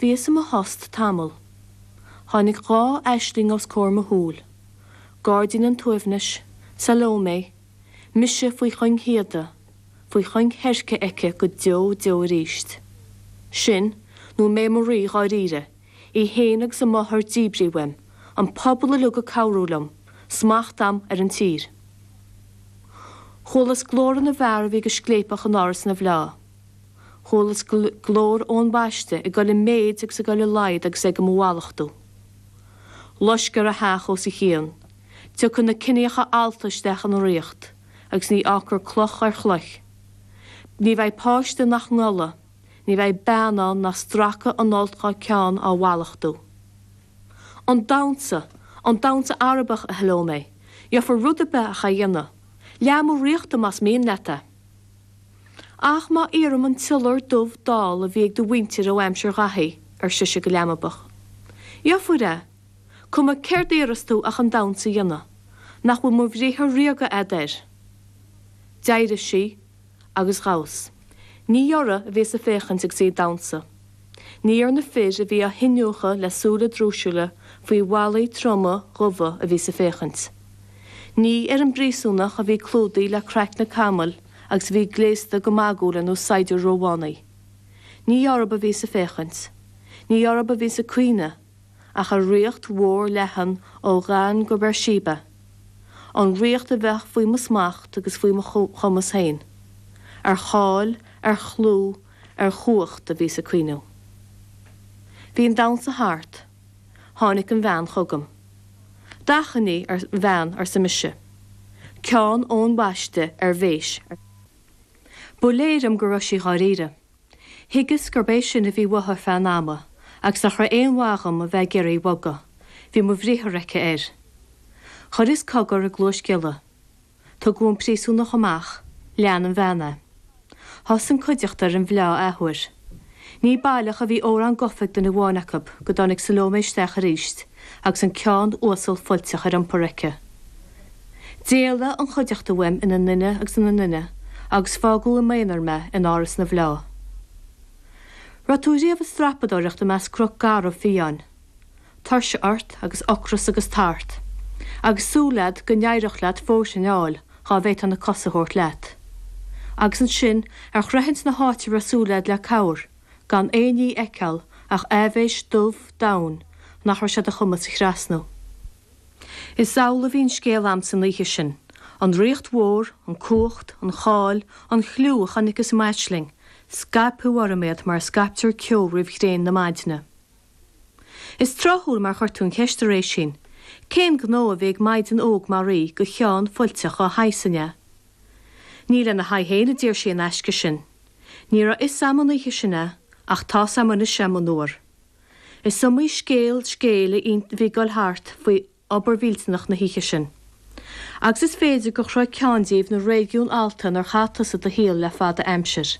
Bhíos i mo thost tamall. Tháinig dhá aisling os comhair mo shúl, Gairdín an tSuaimhnis, Salómé, mise faoi chuing shíoda, faoi chuing sheirce aici go deo deo arís. Sin, nó mé i mo rí dháiríre, í féin agus a máthair díbrithe uaim, an pobal uilig ag cabhrú liom, smacht agam ar an tír. Chualas glórtha na bhfear a bhí go scléipeach in Áras na bhFleá. Chualas glór Eoin Baiste ag dul i méid agus ag dul i laghad agus é do mo mhallachtú. Loiscfear a theach os a chionn. Tiocfaidh na ciníocha allta isteach ina ríocht agus ní fhágfar cloch ar chloich. Ní bheidh páiste nach ngolfaidh, ní bheidh bean ann nach stracfaidh an fholt dhá ceann á mhallachtú. An damhsa, an damhsa Arabach, a Shalómé, gheobhair rud ar bith ach é a dhéanamh. Leath mo ríochta más mian leat é. Ach má iarraim an t-iolar dubh dall a bhí ag do mhuintir ó aimsir Dháithí, ar sise go leanbach. Gheobhair é. Cuma céard iarras tú ach an damhsa a dhéanamh. Nach bhfuil mo bhriathar ríoga agat air? D'éirigh sí agus dhamhas. Ní uirthi a bhíos a' féachaint agus í a' damhsa. Ní ar na fir a bhí á hiniúchadh le súile drúisiúla faoi mhalaí troma dhubha a bhíos a' féachaint. Ní ar an bpríosúnach a bhí clúdaithe le craicne camaill agus a bhí gléasta go magúil ar nós saighdiúir Rómhánaigh. Ní orthu a bhíos a' féachaint, ní orthu a bhíos a' cuimhniú, ach ar ríocht mhór leathan ó Dhan go Beirsheba, an ríocht a bheadh faoi mo smacht agus faoi mo chumas féin. Ar cháil, ar chlú, ar chumhacht a bhíos a' cuimhniú. Bhí an damhsa thart. Tháinig an bhean chugam. D'achainí a bhean arsa mise. Ceann Eoin Bhaiste ar mhéis. Ba léir dom go raibh sí dháiríre. Thuigeas gurb é sin a bhí uaithe ar feadh an ama agus nach raibh aon mhaith dhom a bheith ag iarraidh í a bhogadh. Bhí mo bhriathar aici air. Chuireas cogar i gcluais giolla. Tugadh an príosúnach amach. Lean an bhean é. Thosaigh an cuideachta ar an bhfleá athuair. Ní baileach a bhí amhrán gafa ag duine amháin acu go dtáinig Salómé isteach arís agus an ceann uasal fuilteach ar iompar aici. D'éalaigh an chuideachta uaim ina nduine agus ina nduine agus fágadh i m'aonar mé in áras na bhfleá. Raibh tú riamh ag strapadóireacht i measc cnoc garbh fiáin? tuirse ort agus ocras agus tart, agus súil agat go n-éireodh leat fóirthin fháil dhá bhféadfá na cosa thabhairt leat. Agus ansin, ar shroichint na háite a raibh súil agat le cabhair, gan aon ní fheiceáil ach aibhéis dubh domhain nach raibh sé i do chumas a thrasnú. Is amhlaidh a bhí an scéal a'm san oíche sin, an ríocht mhór, an cumhacht, an cháil, an chliú a chonaiceas i m'aisling, scaipthe orm iad mar a scaiptear ceo roimh ghréin na maidne. Is tráthúil mar chuir tú an cheist, a Réisín. Cén gnó a bhí ag maighdean óg mar í go cheann fuilteach an fháidh sin, an ea? Ní lena haghaidh féin a d'iarr sí an aisce sin. Ní raibh fhios a'm an oíche sin é, ach tá's a'm anois é, monuar. Is iomaí scéal scéil a bhí ag dul thart faoi obair mhillteanach na hoíche sin. Agus is féidir gur shroich ceann díobh na réigiúin allta inar chaith tusa do shaol le fada aimsir.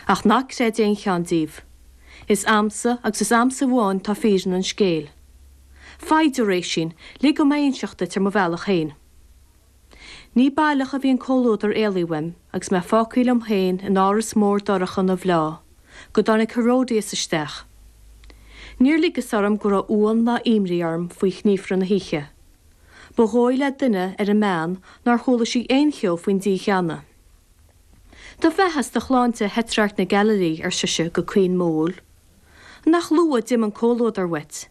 Ach ná creid aon cheann díobh. Is a'msa, agus is a'msa amháin atá fírinne an scéil. Foighid, a Réisín, lig dom é inseacht duit ar mo bhealach féin. Ní baileach a bhí an comhluadar éalaithe uaim agus mé fágtha liom féin in áras mór dorcha na bhfleá, go dtáinig Herodias isteach. Níor ligeas orm go raibh uamhan ná imní orm faoi ghníomhartha na hoíche. Ba dhóigh le duine ar an mbean nár chuala sí aon cheo faoin dícheannadh. Do bheatha is do shláinte a Thetrarc na Gaililí, ar sise go caoin modhúil. Nach luath d'imigh an comhluadar uait!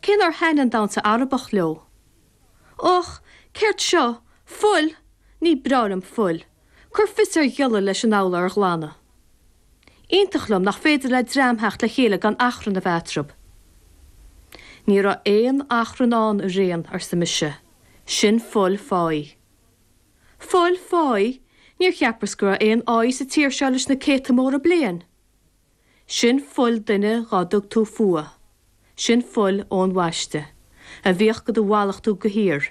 cé nár thaitnigh an damhsa Arabach leo. Och, céard seo? Fuil! Ní breá liom fuil! Cuir fios ar ghiolla leis an urlár a ghlanadh. Iontach liom nach féidir le dream theacht le chéile gan achrann a bheith eatarthu. Ní raibh aon achrann ann a ríon, arsa mise. Sin fuil fáidh. Fuil fáidh? Níor cheapras go raibh aon fháidh sa tír seo leis na céadta móra bliain. Sin fuil duine dhá dtug tú fuath, sin fuil Eoin Bhaiste, a bhíodh go do mhallachtú go síoraí.